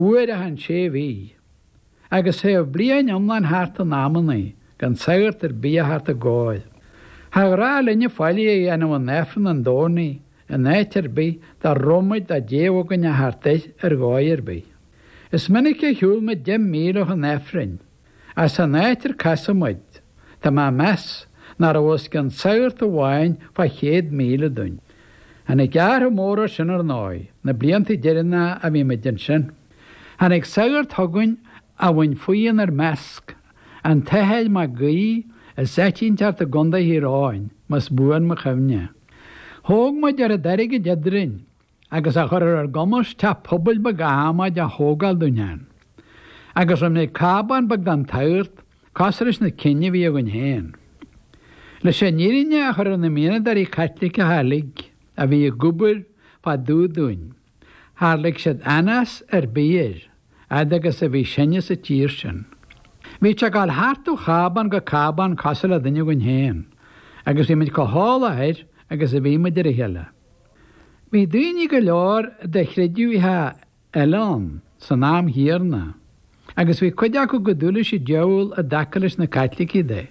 Uair amháin sa mhí. Agus théadh bliain iomlán thart in amannaí gan sagart ar bith a theacht dár gcóir. Char ghnách linne faillí a dhéanamh in Aifreann an Domhnaigh in áit ar bith dá raibh muid dá dtéadh againn a theacht air ar dhóigh ar bith. Is minic a shiúl muid deich míle chun Aifrinn. Ach san áit ar casadh muid, tá mé ag meas nach raibh os cionn sagart amháin fá chéad míle dúinn. Tháinig athrach mór air sin, ar ndóigh, na blianta deireanacha a bhí muid ansin. Tháinig sagart chugainn a bhain faoi inár measc an tAthair Mag Aoidh as áit inteacht i gCondae Thír Eoghain, más buan mo chuimhne. Thóg muid oiread airgid eadrainn. agus a chuir ar ár gcumas teach pobail beag adhmaid a thógáil dúinn ann. Agus rinne muid cábán beag don tsagart, cosúil leis na cinn a bhí againn féin. Leis an fhírinne a chur ar na mianadóirí Caitliceacha uilig a bhí ag obair fá dtaobh dúinn, char lig siad anás ar bith air fhad agus a bhí sinne sa tír sin. Bhíodh sé ag dul thart ó chábán go cábán cosúil le duine againn féin, agus bhí muid chomh heolach air agus a bhí muid ar a chéile. Bhí daoine go leor de chreideamhacha eile ann san am chéanna agus bhí cuid acu chomh dubh leis an diabhal i dtaca leis na Caitlicigh de.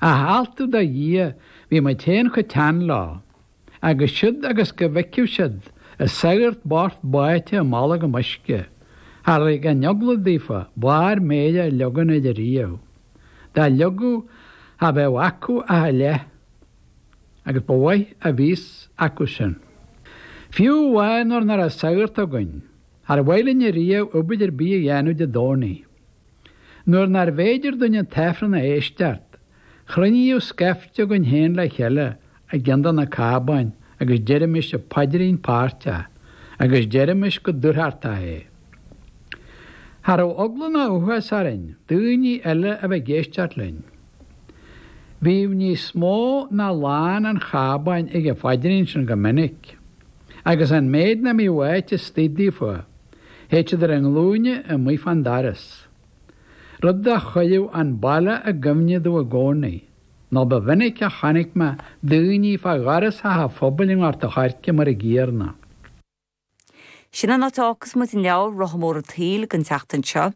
Ach altú do Dhia bhí muid féin chomh teann leo agus siúd agus go bhfeicfeadh siad an sagart bocht báite i mbolgam uisce char lig an eagla daofa barr méire a leagan air riamh. Dá leagadh cha bheadh acu ach a leith. Agus ba mhaith a bhí a fhios acu sin. Fiú amháin nuair nach raibh sagart againn, char mhaith linne riamh obair ar bith a dhéanamh Dé Domhnaigh. Nuair nárbh fhéidir dúinn an tAifreann a éisteacht, chruinníodh scaifte againn féin le chéile i gceann de na cábáin agus deirimis an paidrín páirteach agus deirimis go dúthrachtach é. Cha raibh eagla ná uathbhás orainn daoine eile a bheith ag éisteacht linn. Bhíodh níos mó ná lán an chábáin ag an phaidrín sin go minic, agus an méid nach mbíodh áit istoigh daofa, théadh siad ar a nglúine amuigh fán doras. Rud a chuireadh an baile i gcuimhne domh i gcónaí nó ba mhinic a chonaic mé daoiní fá dhoras Theach a' Phobail i nGort a' Choirce mar an gcéanna. Sin an áit a fhágfas muid an leabhar Rotha Mór an tSaoil don tseachtain seo.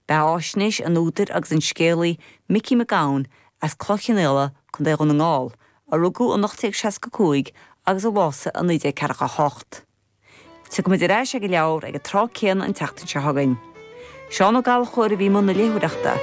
Beathaisnéis an údair agus an scéalaí Micí Mac Gabhann as Cloich Chionnaola, Co. Dhún na nGall, a rugadh in 1865 agus a bhásaigh in 1948. Tiocfaimid ar ais ag an leabhar ag an tráth céanna an tseachtain seo chugainn. Seán Ó Gallchóir a bhí i mbun na léitheoireachta.